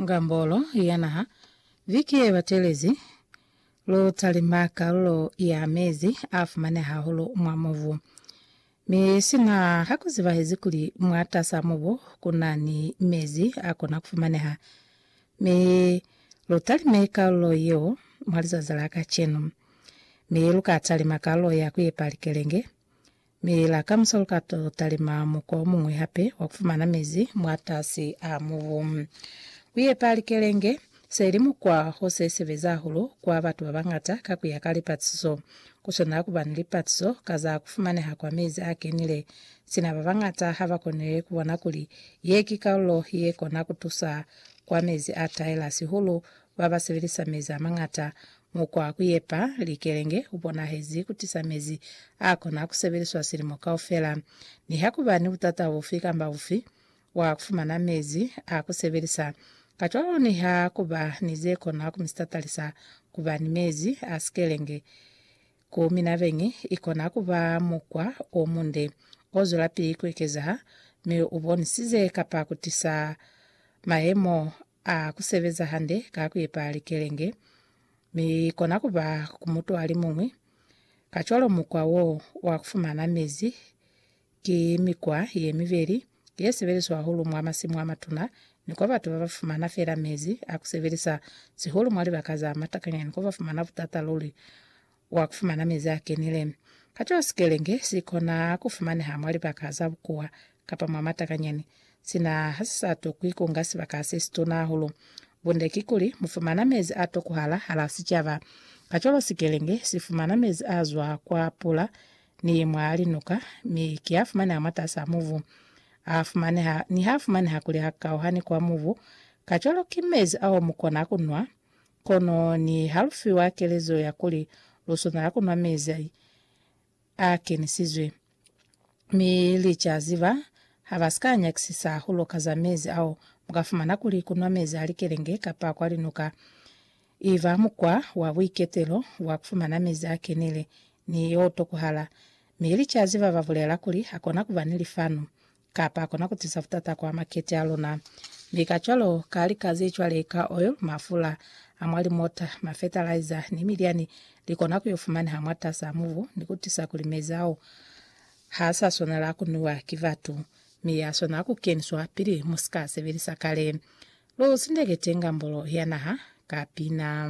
Ngambolo ya Naha. Viki ye batelezi, lu talima kalulo ya mezi a fumaneha hahulu mwa mubu, mi sina ha ku zibahezi kuli mwatas'a mubu ku na ni mezi a kona ku fumaneha. Mi lu talime kalulo yeo mwa lizazi la kacenu. Mi lu ka talima kalulo ya ku epa likelenge. Mi la kamusa lu ka to talima mukwa o muñwi hape wa ku fumana mezi mwatasi a mubu. Ku yepa likelenge se li mukwa o se sebeza hahulu kwa batu ba bañata ka ku ya ka lipatiso. Ku swanela ku ba ni lipatiso ka za ku fumaneha kwa mezi a kenile, sina ba bañata ha ba koni ku bona kuli ye ki kalulo ye kona ku tusa kwa mezi a taela sihulu ba ba sebelisa mezi a mañata Mukwa wa ku yepa likelenge u bonahezi ku tisa mezi a kona ku sebeliswa silimo kaufela. Niha ku ba ni butata bufi kamba bufi, wa ku fumana mezi a ku sebelisa. Kacwalo niha ku ba ni ze kona ku mi sitatalisa ku ba ni mezi a sikelenge, ku mina beñi i kona ku ba mukwa o munde o zwelapili ku ekezaha mi u bonisize kapa ku tisa mayemo A ku sebeza hande ka ku ipa likelenge, mi kona ku ba ku mutu a li muñwi. Kacwalo mukwa wo wa ku fumana mezi ki mikwa ye mibeli ye sebeliswa hahulu mwa masimu a matuna ni kwa batu ba ba fumana fela mezi a ku sebelisa, sihulu mwa libaka za matakanya ni kwa ba fumana butata luli wa kufumana mezi a kenile. Kacwalo sikelenge si kona kufumaneha mwa libaka za bukuwa kapa mwa matakanyani, sina ha si sa tokwi kunga sibaka se situna hahulu. Bunde kikuli, mu fumana mezi a tokuhala hala sicaba. Kacwalo sikelenge si fumana mezi a zwa kwa pula ni mwa linuka, mi ki a fumaneha mwatas'a mubu. A fumaneha, niha a fumaneha kuli a kauhani kwa mubu, kacwalo ki mezi ao mu kona kunwa Kono niha lu fiwa kelezo ya kuli lu swanela ku nwa mezi a kenisizwe, mi li ca ziba ha ba si ka nyakisisa hahulu ka za mezi ao, mu ka fumana kuli ku nwa mezi a likelenge kapa kwa linuka i ba mukwa wa buiketelo wa ku fumana mezi a kenile ni o tokuhala. Mi li ca ziba ba bulela kuli ha kona ku ba ni lifanu Kapa kona ku tisa butata kwa makete a luna. Mi kacwalo, ka lika ze cwale ka oil, mafula a mwa limota, mafertiliza, ni milyani, li kona ku yo fumaneha mwatas'a mubu ni ku tisa kuli mezi ao ha sa swanela ku nwiwa ki batu, mi ya swanela ku keniswa pili mu si ka a sebelisa kale. Lu sindekete ngambolo ya naha ka pina.